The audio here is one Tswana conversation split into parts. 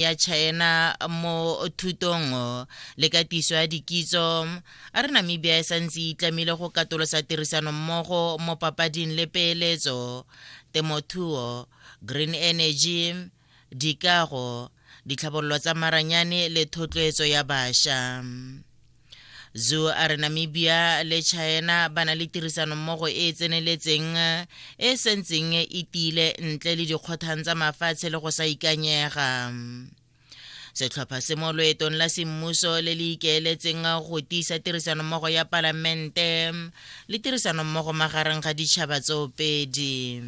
ya China mo thutong le katiso ya dikitso a re namibia e santse e itlamile go katolosa tirisano mmogo mo papading le peeletso temothuo green energy dikago ditlhabololo tsa maranyane le thotloetso ya bašwa Zhu a re Namibia le China ba na le tirisanommogo e e tseneletseng e e sentseng e tiile ntle le dikgothang tsa mafatshe le go sa ikanyega setlhopha se mo loetong la semmuso le le ikeeletseng go tiisa tirisanommogo ya palamente le tirisanommogo magareng ga ditšhaba tsoopedi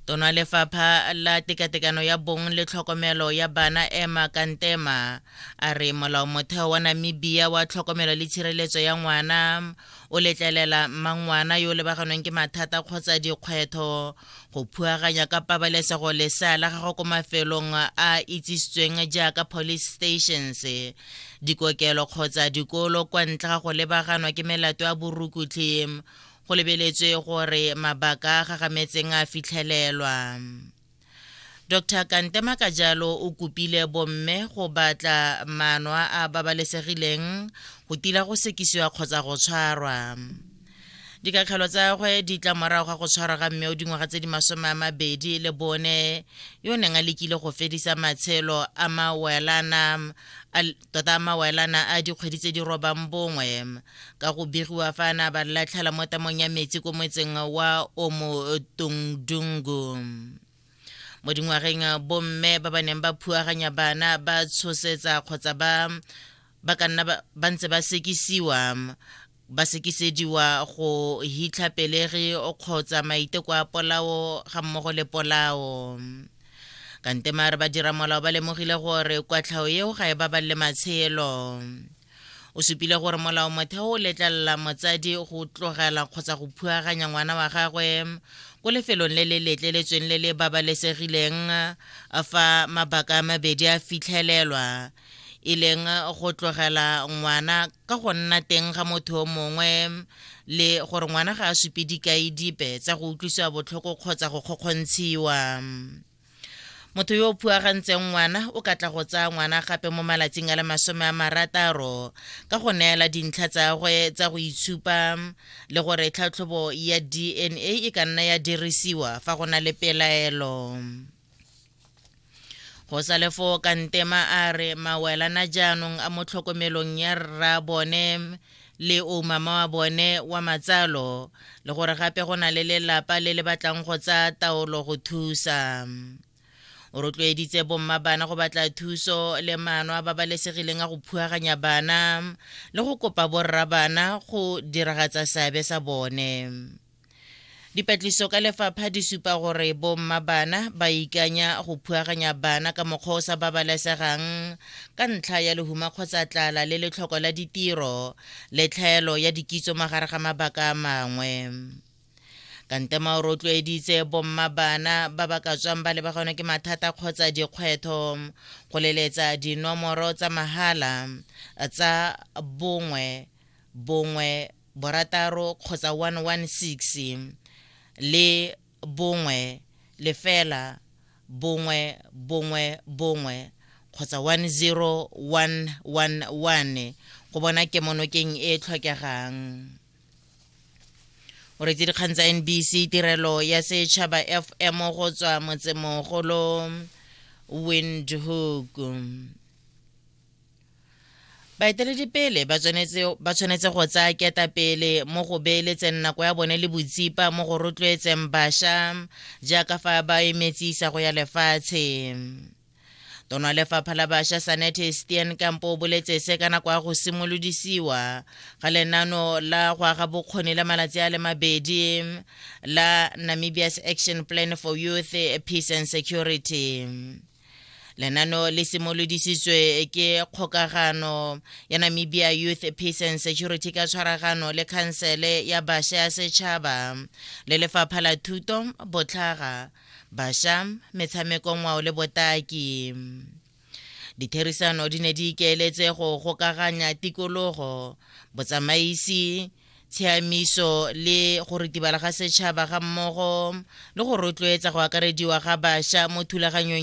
tona lefapha la tekatekano ya bong le tlhokomelo ya bana ema kantema a re molao motheo wa namibia wa tlhokomelo le tshireletso ya ngwana o letlelela mmangwana yo lebaganweng ke mathata kgotsa dikgwetho go phuaganya ka pabalesego lesea la gago ko mafelong a itsisitsweng jaaka police stations dikokelo kgotsa dikolo kwa ntle ga go lebaganwa ke melato ya borukutlhi go lebeletswe gore mabaka a gagametseng a fitlhelelwa dr kantema ka jalo o kopile bomme go batla maano a a babalesegileng go tila go sekisiwa kgotsa go tshwarwa dikakgelo tsa gwe di tla morago ga go tshwarwa ga mme o dingwaga tse di masome a mabedi le bone yo neng a lekile go fedisa matshelo a mawelana tota mawaelana a dikgwedi tse di robang bongwe ka go begiwa fa a ne a ba latlhela mo tamong ya metsi ko motseng wa omotongdungu mo dingwageng bomme ba ba neng ba phuaganya bana ba tshosetsa kgotsa ba ba ka nna ba ntse ba sekisiwa ba sekisediwa go hitlha pelegi kgotsa maiteko a polao ga mmogo le polao kante maare badiramolao ba lemogile gore kwatlhao eo ga e babalele matshelo o supile gore molao motheo o letlelela motsadi go tlogela kgotsa go phuaganya ngwana wa gagwe ko lefelong le le letleletsweng le le babalesegileng fa mabaka a mabedi a fitlhelelwa e leng go tlogela ngwana ka go nna teng ga motho o mongwe le gore ngwana ga a supe dikai dipe tsa go utlwisiwa botlhoko kgotsa go kgokgontshiwa motho yo o phuagantseng ngwana o ka tla go tsaya ngwana gape mo malatsing a le masome a marataro ka go neela dintlha tsa gwe tsa go itshupa le gore tlhatlhobo ya dna e ka nna ya dirisiwa fa go na le pelaelo go sa le foo kantema a re mawelana jaanong a mo tlhokomelong ya rra bone le o mama wa bone wa matsalo le gore gape go na le lelapa le le batlang go tsaya taolo go thusa o rotloeditse bomma bana go batla thuso le maano a babalesegileng a go phuaganya bana le go kopa borra bana go diragatsa seabe sa bone Dipatliso ka lefapha di supa gore bomma bana ba ikanya go phuaganya bana ka mokgwa o sa babalesegang ka ntlha ya lehuma kgotsa tlala le letlhoko la ditiro le tlhaelo ya dikitso magare ga mabaka a mangwe kantema o rotloeditse bomma bana ba ba ka tswang ba lebaganwe ke mathata kgotsa dikgwetho go leletsa dinomoro tsa mahala tsa bongwe bongwe borataro kgotsa 116 le bongwe lefela bongwe bongwe bongwe kgotsa 10111 go bona kemonokeng e e tlhokegang. O retse dikgang tsa NBC tirelo ya setšhaba FM go tswa motsemogolo Windhoek. baeteledipele ba tshwanetse go tsaya ketapele mo go beeletseng nako ya bone le botsipa mo go rotloetseng basha jaaka fa ba emetse isago ya lefatshe tono ya lefapha la basha sanete stian kampo o boletse se ka nako ya go simolodisiwa ga lenano la go aga bokgoni la malatsi a le mabedi la namibia's action plan for youth peace and security lenano le simolodisitswe ke kgokagano ya namibia youth peace and security ka tshwaragano le khansele ya basha ya setšhaba le lefapha la thuto botlhaga basha metshameko ngwao le botaki ditherisano di ne di ikaeletse go gokaganya tikologo botsamaisi tshiamiso le go ritibala ga setšhaba ga mmogo le go rotloetsa go akarediwa ga basha mo thulaganyong